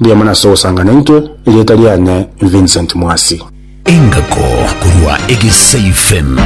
Mbuya mono ase ogosanga naintwe, erieta riane Vincent Mwasi. Engako korwa Egesei FM.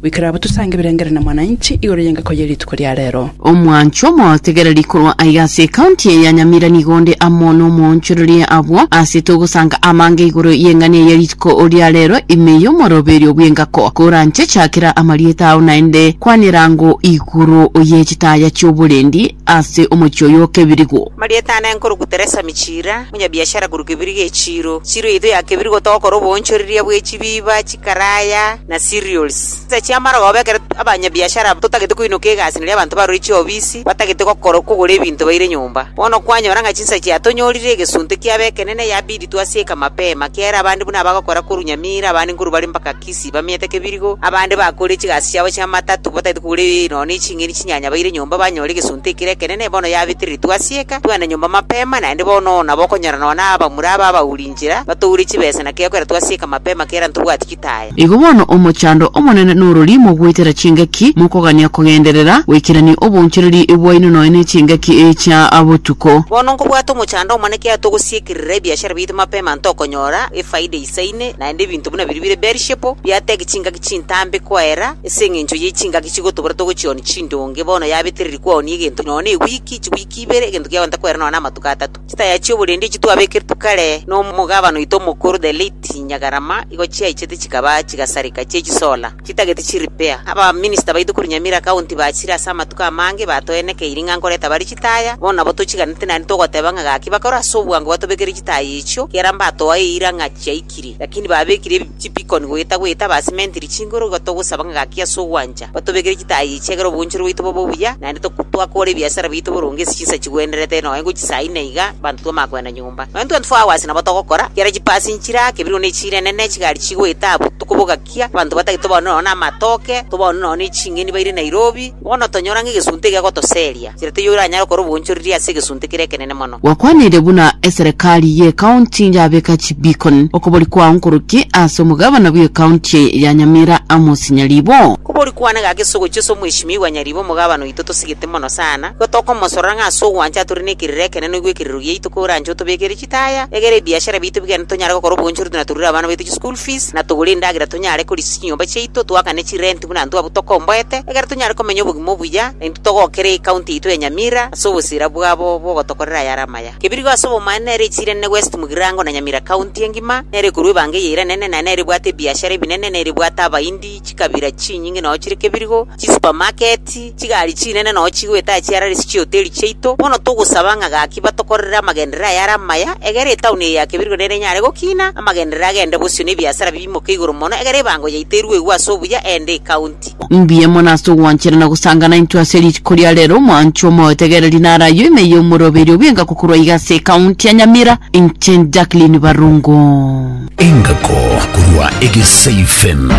Goikera abwo tosange ebirengerero na Mwananchi igoro y'engako ye rituko ria rero. Omwancho omotegereri korwa aiga ase ecounty eye ya Nyamira nigo onde amo nomoonchoreria abwo ase togosanga amange igoro y'eng'ani eye rituko ria rero ime y'omoroberio bw'engako koranche chakera amarieta ao naende kwanera ango igoro ye chitaya chi'oborendi ase omochie oyo o Kebirigo. Marieta ane nkoruku Teresa Michira, omonyabiashara korwa Kebirigo echiro. Chiro yaito ya Kebirigo togokora oboonchoreria bwe chibiiba, chikaraya, na cereals. Chinsa chiamara goba ekero abanyabiashara aba totagete koinoka egasi nari abanto barure chiobisi batagete gokora kogora ebinto baire nyomba. Bono kwanyora ng'a chinsa chiatonyorire egesunte kiabo ekenene yabidi twasieka mapema kiaere abande buna abagokora korwa Nyamira abande nkorwa bare mpaka Isi bamiete kebirigo, abande bakore chigasi chiabo chi'amatatu bataete kogora ebiayi nonya ne ching'eni chinyanya baire nyomba banyore egesunte ekere ekenene, bono yabitiritwe ase eka, twende nyomba mapema, naende bono oo nabo okonyora nonya nabamura aba abauri inchera batoure chibesa na kegokeratwe ase eka mapema kera ntobwati gitaya. Igo bono omochando omonene norori mogoitera chingaki, mokogania kogenderera goikerania obonchereri bwaino nonya ne chingaki chia botuko. Bono nkobwate omochando omonene kiagera togosiekerera ebiashara biaito mapema ntokonyora efaida ise. Saini, naende ebinto buna biria bire Beerishepo, biato egechingaki chintambe koera, ase engencho ye chingaki chigotobora togochionia chindonge, bono yabetereri kwonia egento nonya ne ewiki, chiwiki ibere, egento kiagenta koera nonya namatuko atato. Chitaya chia oborendi echio twabekeretwe kare nomogabana oito omokoro, the late Nyagarama, igo chiaichete chikaba chigasareka chiechisola. Chitagete chiripea. Abaminista baito korwa Nyamira County bachire ase amatuko amange batoenekeiri ng'a nkoreta bare chitaya, bono nabo tochiganete naende togoteba ng'a gaki bakore ase obwango batobekere chitaya echio, ekiagera mbatoa eira ng'a chiaikire. Lakini babekire ebi chibikoni goeta goeta basimentiri chinguru, igo togosaba ng'a gaki ase ogwancha batobekere chitaya echi ekiagera oboonchori bwaito bobe obuya, naende toku twakora ebiasara biaito boronge ase chinsa chigwenerete noe ngochia saa ine iga abanto twamanya koenda nyomba. Nonya 24 hours nabo togokora, ekiagera chipasi nchirake, ebirugu nechiire enene, chigari chigoeta abwo tokoboga. gosakia, abanto batagete tobaoni nonya namatoke, tobaoni nonya ne ching'eni baire Nairobi, bono tonyora ng'a egesunte egegotoseria, nchera teiyo oranyare gokora obonchoreri ase egesunte kere ekenene mono. Gwakwanirie buna eserekari y'ekaunti yabeka chibeacon okobori kwao nkoroki ase omogabana bw'ekaunti eye ya Nyamira Amos Nyaribo. Okobori kwane gaka ase ogochia ase Omweshimiwa Nyaribo omogabana oito tosigete mono sana, igo tokomosorora ng'a ase ogwancha atore nekerero ekenene oigwe ekerero giaito koranche otobekere Amagita aya egere ebiashara biaito bigende, tonyare gokora obonchori na torure abana baito chischool fees, na togore endagera tonyare korisia chinyomba chiaito, toakane chirenti buna intwe abwo tokomboete, egere tonyare komenya obogima obuya, na intwe togokere ecounty yaito ya Nyamira ase obosira bwabo bogotokorera ayare amaya. Kebirigo ase obomaene nere echiirane na West Mugirango na Nyamira County engima, nere ekorua ebango eyeiranene, na nere ebwate ebiashara ebinene, nere ebwate Abahindi, chikabira chinyinge nonya chire kebirigo, chisupamaketi, chigari chinene nonya chigoeta chiarare ase chihoteli chiaito. Bono togosaba ng'a gaki batokorere amagenderero aya are amaya, egere etaoni eye ya kebirigo nere enyare gokina, amagenderero agende bosio na ebiasara biimoke igoro mono, egere ebango yaito erue igwe ase obuya, eende ekaunti. Mbuya mono ase ogwanchera na gosangana intwe ase rituko ria rero, mwanche omoetegereri nare ayio ime y'omoroberi obwenga gokorwa iga ase ekaunti ya Nyamira, inche Jacqueline Barungu. Engako korwa egeseifen.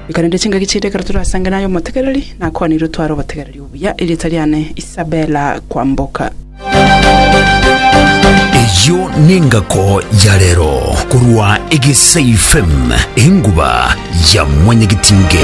Nkarende chingaki chiaito ekero torasange naye omotegereri, nakwanire otware obotegereri obuya. Erieta riane Isabella Kwamboka. Eyio nengako ya rero korwa Egesei FM, enguba ya mwanyagitinge.